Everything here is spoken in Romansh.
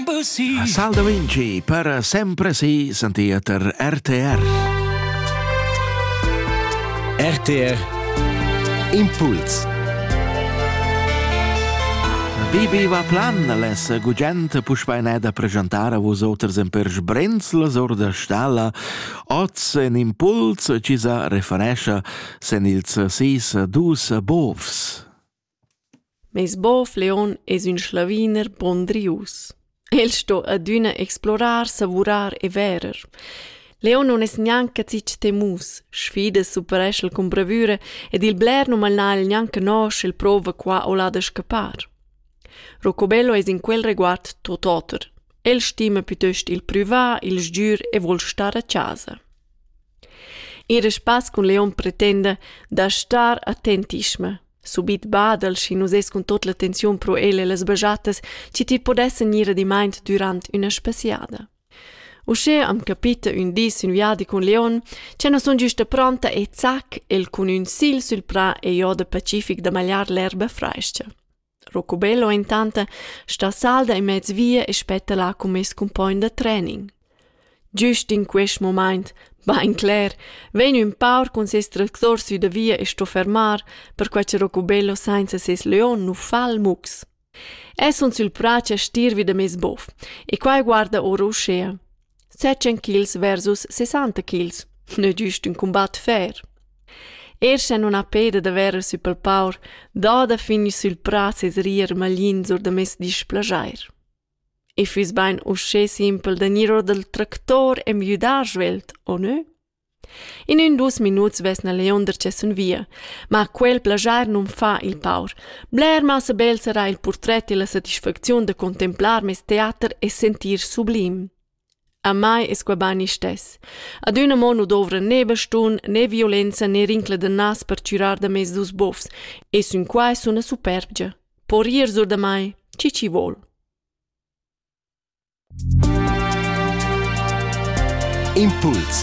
A Saldavinci per sempre si sentia ter RTR. RTR Impuls Bibi va plan les gugent puspeineda presentar a vos oters en per sbrenzles or da stalla oz en impuls ci sa referescha sen ils sis dus bovs. Meis bov Leon es ün sclaviner pondrius. El sto adüna explorar, savurar e verer. Leon nun es gnanca zich temus, sfidas superesch'el cun bravüra ed il bler nu mal n'ha'l gnanca nosch e'l prouva qua o là da scappar. Rocobello es in quel reguard tot oter. El stima piuttost il prüvà, il sgür e voul star a chasa. Ir a spass cun leon pretenda da star attentischma. Subit badel, schi nus es cun tot l'attenziun pro el e las bajatas, chi ti podessan ir adimaint dürant üna spaziada. Uschè am capita ün dis ün viadi cun leon, cha no sun güsta pronta e zac el cun ün sigl sül prà e jo da pacific da magliar l'erba frais-cha. Rocubello intant sta salda in mez via e spetta là cun mes cumpogn da trening. Giust in quest mumaint, bain cler, vegn ün paur cun ses tractor sü da via e sto fermar, perquai che Rocubello sainza ses leon nu fa il mux. Es sun sül prà cha stir vi da meis bof e quai guarda our uschea. Setschen ch'ils versus sessanta ch'ils n'ha giust ün cumbat fer. Er scha nun ha peda da verer sü pel paur, dada fin sül prà ses rir maglins or da meis displaschair. I füss bain uschè simpel da gnir or dal tractor e müdar svelt, o nö? In ün dus minuts vesna Leonder tschessun via, ma quel plaschar nun fa il paur. Bler massa bel sarà il purtret e la satisfacziun da contemplar meis teater e sentir sublim. A mai es qua bain istess. Ad üna mo nu dovra ne bastun, ne violenza, ne rincla da nas per chürar da meis dus bofs, e sün qua es üna superbgia. Po rir sur da mai, chi chi vol. Impuls